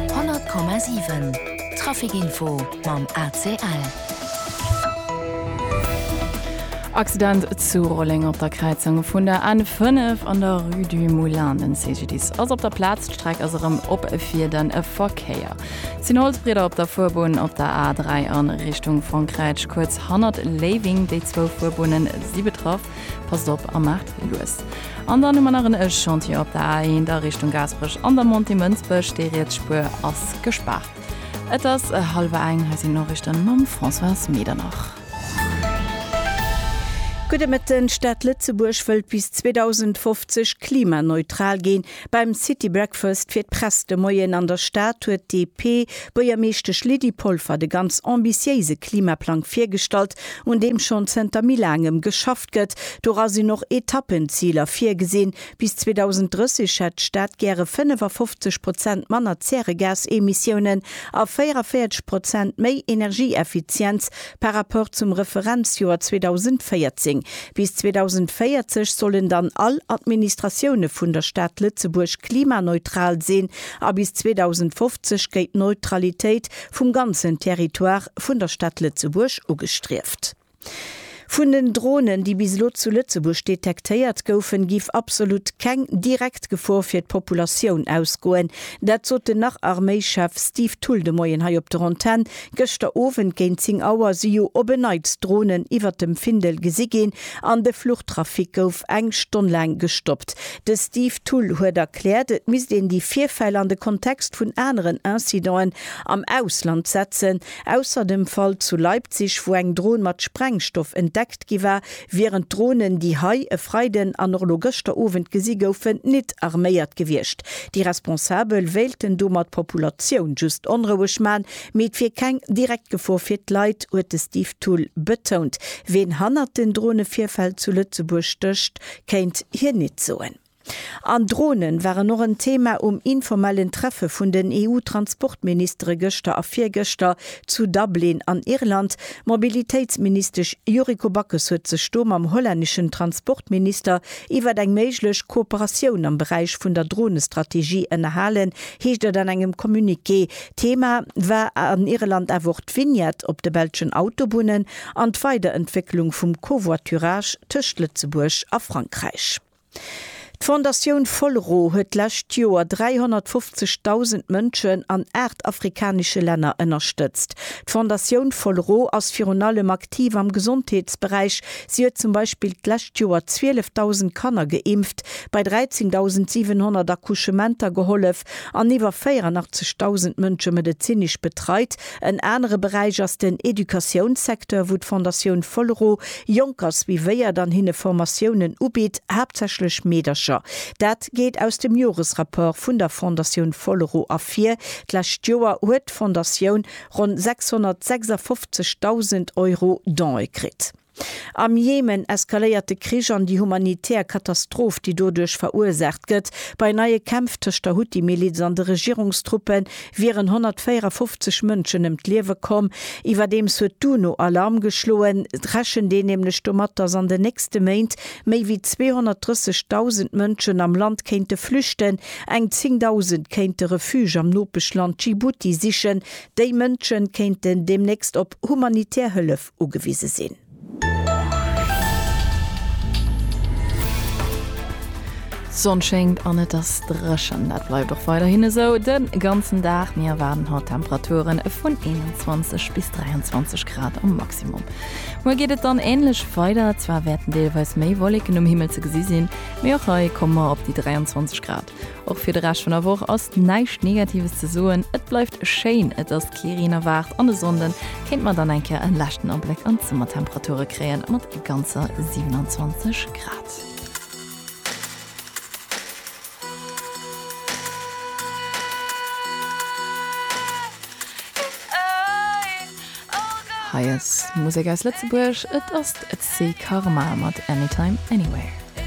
100,7 Trafic Info mam ACL. Accident zu Rolleng op der Kräizung vun der N5 an der Rue du Moulin. Den CGDIS ass op der Plaz, d'Streck ass erëm op fir den Verkéier. Et sinn Holzbrieder op der Fuerbunn op der A3 a Richtung Frankräich, kuerz hannert Léiwing. Déi zwou Fuerbunnen si betraff. Passt op a maacht lues. An dann hu mer nach en Chantier op der A1 a Richtung Gaasperech an der Montée Mënsbech, déi riets Spuer ass gespaart. Et ass hallwer eng, hei sinn d'Noriichten mam Françoise Medernach. Gudde Mëtten, D'Stad Lëtzebuerg wëllt bis 2050 klimaneutral ginn. Beim City Breakfast fir d'Press de Moien an der Stad huet d'DP Buergermeeschtesch Lydie Polfer de ganz ambitiéise Klimaplang virgestallt, un deem schonn zënter méi laangem geschafft gëtt. Dora sinn och Etappenziler virgesinn. Bis 2030 hätt d'Stad gäre 55 Prozent manner Zäregasemissiounen a 44 Prozent méi Energieeffizienz, Par rapport zum Referenzjoer 2014. Bis 2040 sollen dann all Administratioune vun der Stad Lëtzebuerg klimaneutral sinn a bis 2050 gétt d'Neutralitéit vum ganzen Territoire vun der Stad Lëtzebuerg ugestrieft. Vun den Dronen, déi bis elo zu Lëtzebuerg detektéiert goufen, giff absolut keng direkt Gefor fir d'Populatioun ausgoen. Dat sot den Nach-Arméischef Steve Thull de Moien hei op der Antenn Gëschter Owend géint 10 Auer si jo op e Neits Dronen iwwert dem Findel gesi ginn an de Fluchtrafic gouf eng Stonn laang gestoppt. De Steve Thull huet erkläert, et misst een déi Virfäll an de Kontext vun aneren Incidenten am Ausland setzen. Ausser dem Fall zu Leipzig, wou eng Dron mat Sprengstoff entdeckt gi war, wieren d'Dronen, déi hei e Freiden an och elo gëschter Owend gesi goufen, nit arméiert gewiescht. Déi Responsabel wéilten domat d'Populatioun just onroueg man, mee et wier keng direkt Gefor fir d'Leit, huet de Steve Thull betount. Ween hannert den Dronevirfäll zu Lëtzebuerg stécht, kéint hien nit soen. An Dronen waren och en Thema um informellen Treffe vun den EU-Transportministere gëschter a virgëschter zu Dublin an Irland. D'Mobilitéitsministesch Yuriko Backes huet sech do mam hollänneschen Transportminister iwwert eng méiglech Kooperatioun am Beräich vun der Dronestrategie ënnerhalen, heescht et an engem Communiqué. Thema war an Irland awer och d'Vignette op de belschen Autobunnen an d'Weiderentwécklung vum Covoiturage tëscht Lëtzebuerg a Frankräich. D'Fondatioun Folro huet d'lescht Joer 350.000 Mënschen an aacht afrikanesche Länner ënnerstëtzt. D'Fondatioun Folro ass virun allem aktiv am Gesondheetsberäich. Si huet zum Beispill d'lescht Joer 12.000 Kanner geimpft, bei 13.700 Accouchementer gehollef an iwwer 84.000 Mënsche medezinesch betreit, En anere Beräich ass den Educatiounssecteur, wou d'Fondatioun Folero Jonkers suivéiert an hinne Formatiounen ubitt, haaptsächlech Meedercher. Dat geet aus dem Joresrapport vun der Fondatioun Folero ervir. D'lescht Joer huet d'Fondatioun ronn 656.000 Euro Don'e kritt. Am Jemen eskaléiert de Krich an déi humanitär Katastroph, déi doduerch verursaacht gëtt. Bei neie Kämpf tëscht der Huthi-Miliz an de Regierungstruppe wieren 154 Mënschen ëm d'Liewe komm. Iwwerdeems huet d'UNO Alarm geschloen. Et rechent een nämlech domat, datt an den nächste Méint méi wéi 230.000 Mënschen am Land kéinte flüchten. Eng 10.000 kéinte Refuge am Nopeschland Djibouti sichen. Déi Mënsche kéinten deemnächst op humanitär Hëllef ugewise sinn. D'Sonn schéngt an et ass dréchen. Dat bleift och weiderhin esou de ganzen Dag. Mir erwaarden haut Temperature vun 21 bis 23 Grad am Maximum. Muer geet et dann änlech weider, zwar wäerten deelweis méi Wolleken um Himmel ze gesi sinn, mee och hei komme mer op déi 23 Grad. Och fir de Rescht vun der Woch ass näischt Negatives ze soen, et bleift schéin, et ass kee Reen erwaart an e Sonnden kéint mer dann eng Kéier en leschten Abléck an d'Summertemperature kréien mat ganzer 27 Grad. Hei ass Musek aus Lëtzebuerg, et ass d'C Karma mat Anytime Anywhere.